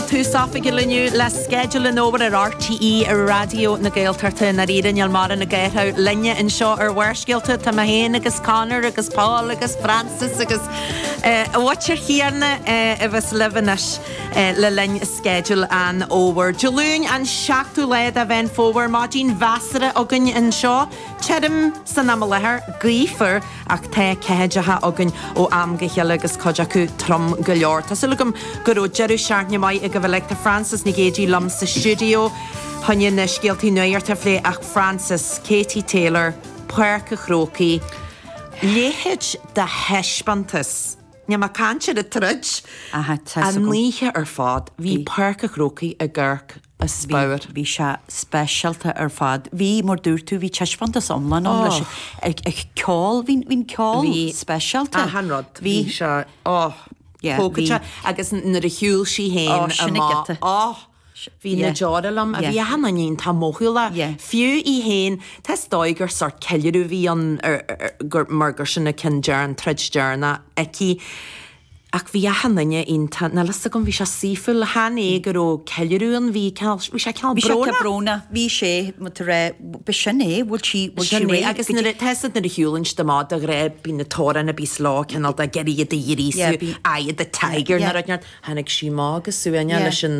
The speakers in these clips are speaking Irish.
Tús oifigiúil inniu le sceideal an fhómhair ar RTÉ Raidió na Gaeltachta. I ndáiríre, níl mórán ag athrú linne anseo ar Bharrscéalta. Tá mé féin agus Conor agus Paul agus Frances agus an mhuintir chéanna abhus libh anois le linn sceideal an fhómhair. Dé Luain an seachtú lá de Mheán Fómhair, maidin mheasartha againn anseo. Tirim san am i láthair, gaofar. ach tá ceathaideacha againn ó am go chéile agus cuid acu trom go leor. Tá súil agam go raibh deireadh seachtaine maith agaibh uilig. Tá Frances Nic Géadaigh liom sa stiúideo choinne na scéaltaí nuachta a phlé ach Frances, Katie Taylor, Páirc an Chrócaigh. A leithéid de thaispeántas. Níl mé ag caint ar an troid. An oíche ar fad, bhí Páirc an Chrócaigh i gCork. a spior. Bhí sé speisialta ar fad. Bhí, mar dúirt tú, bhí taispeántas iomlán ann leis an ceol, bhí an ceol speisialta. Bhí achan rud, bhí sé, oh, tógtha te agus nuair a shiúil sí féin amach, oh, bhí na deora liom, bhí achan duine iontach mothúlach, fiú í féin, tá is dóigh gur sort ceiliúradh a bhí ann mar gur sin a ceann deireanach, an troid deireanach aici. Ach bhí achan duine iontach, níl fhios agam, bhí sé saoithiúil, chan é go raibh ceiliúradh ann, bhí cineál, bhí sé cineál brónach. Bhí sé brónach, bhí sé, but a raibh, b'shin é, bhfuil sí, bhfuil sí réidh? Agus nuair a, tá fhios a'd nuair a shiúlann siad amach, de ghnáth, bíonn an t-amhrán a bíos leo, cineál de, ag iarraidh iad a ghríosú, eye of the tiger, nuair a, tháinig sí amach go suaimhneach leis an.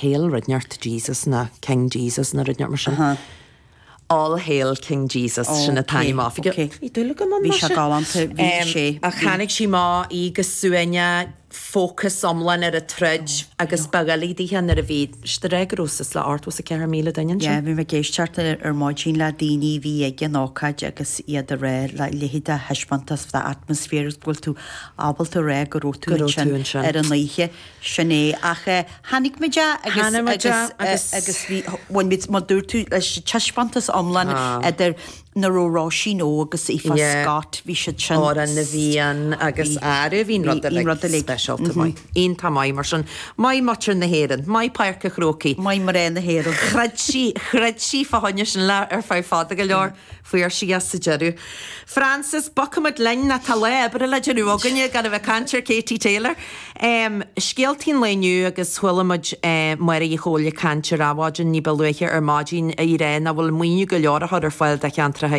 Hail rud inteacht Jesus nó King Jesus nó rud inteacht mar sin. All Hail King Jesus sin an t-ainm oifigiúil. Bhí dúil agam ann maise. Bhí sé galánta bhí sé. Ach tháinig sí amach go suaimhneach fócas iomlán ar an troid agus ba dhoiligh dithe nuair a bhí siad ag rá go raibh suas le 84,000 duine ansin. Yeah bhí mé ag éisteacht ar maidin le daoine bhí ag an ócáid agus iad ag rá a leithéid de thaispeántas an t-atmaisféar is go bhfuil tú ábalta rá go raibh tú ansin ar an oíche. Sin é, ach eh, tháinig muid eh agus, agus bhí, bhain muid, mar dúirt tú, leis an taispeántas iomlán idir nuair a raibh Róisín O agus Aoife Scott, bhí siad sin, Amhrán na bhFiann agus aire, bhí rud uilig speisialta, maith, iontach maith, mar sin, maith muintir na hÉireann, maith Páirc an Chrócaigh, maith mná na hÉireann, throid sí, throid sí fá choinne sin le, ar feadh fada go leor. Fuair sí é sa deireadh. Frances, bogfaidh muid linn, nó tá lá oibre le déanamh againne gan a bheith ag caint ar Katie Taylor. Scéaltaí an lae inniu agus chuala muid Máire Uí Chomhaill ag caint ar Adhmhaidin ní ba luaithe ar maidin í ag rá nach bhfuil maoiniú go leor á chur ar fáil do cheantracha